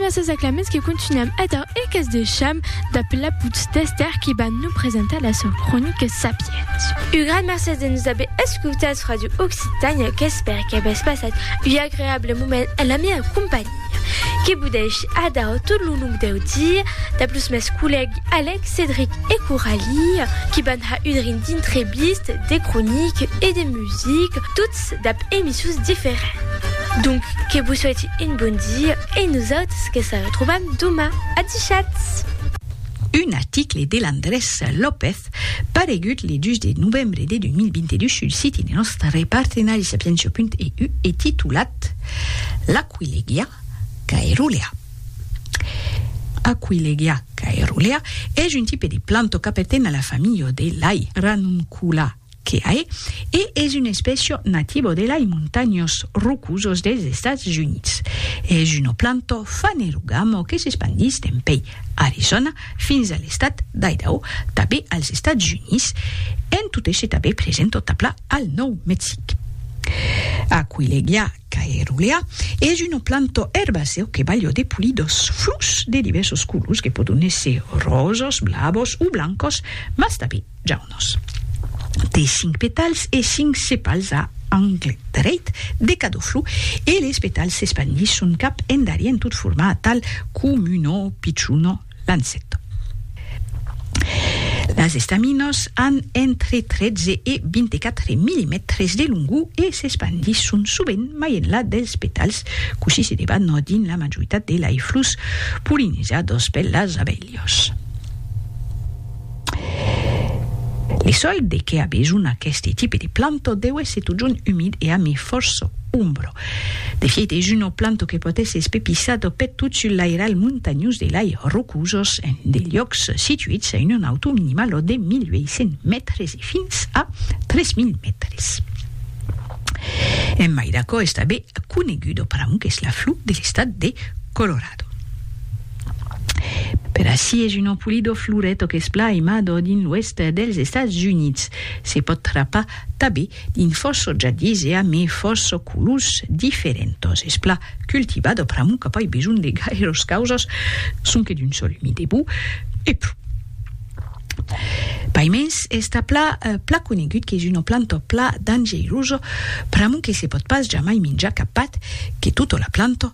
Gràcies a Clemens que continuem èdher e qu'es de cham dab la putz d'Esther qui va nous presentar la sua cronica Sapiens. Un gran mercés de nous haver escutats Radio Occitània qu'espère que avètz passat un agreable moment en la mia companhia. Que vous deixe èdher tot lo long deu dia dab los mes collègues Alex, Cédric e Coralie qui van ha udrin d'intreviste, de cronique e de musique, tot dab emissions diferents. Donc que vos soiti un bon dia e nosautres que se retrobam doma. Adishatz! Un article de Landrés López paregut le 2 de novembre de 2022 sul siti de nòstre partenari Sapientia.eu e titulat L'aquilegia caerulea Aquilegia caerulea es un tipe de planto qu'aperten a la familha de lei, Ranuncula. Keae e es un espècio nativo de lai montanhos rocosos dels Estats Units. Es uno planto fanerogamo que s'espandís dempèi Arizòna fins a l'estat d'Idaho, tabé als Estats Units, en tot èsser tabé present tot a pla al Nòu Mexic. Aquileglia Caerulea es una planta erbacèu que balha de polidors flors de divèrsos colors que pòdon èsser ròsas, blavas o blancas, mas tanben jaunas. Té cinc petals e cinc sepals a angle dreit de cada flor e les petals s'espandisson cap endarrier en tot formar tal comuna pichona Lancet. Las estaminas an entre 13 e 24 millimètres de longor e s'espandisson sovent mai enlà dels petals, cossí se debat dins la majoritat de lei flors polinizadas per las abelhas. Li sòl de qué a besonh aqueste tipe de planto deu èsser totjorn umid e ami fòrça ombra. De fièit es una planto que pòt èsser espepissada peth tot sul lairalh montanhós de lai rocosas en de liòcs situits a una nautor minimala de 1.800 mètres e fins a 3.000 mètres. En mai d'aquò es tanben coneguda per amor qu'es la flor de l'estat de Colorado. Per ací es un empolidor floret o qu'es plan aimador dins l'oèst dels Estats Units. Se pòt trapar tabé dins fòrça jardins e a mai fòrça colors diferentas. Es plan cultivat o pr'amor qu'a pas besonh de gaires causas, sonque d'un sòl umid e bon e pro. Paimens es tà plan plan conegut qu'es una planta plan dangeirosa pr'amor que se pòt pas jamai minjar cap pat que tota la planta.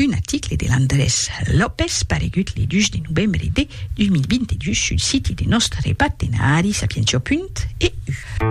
Un article de Landrés López paregut le 2 de novembre de 2022 sul siti de nòstre partenari Sapientió. EU.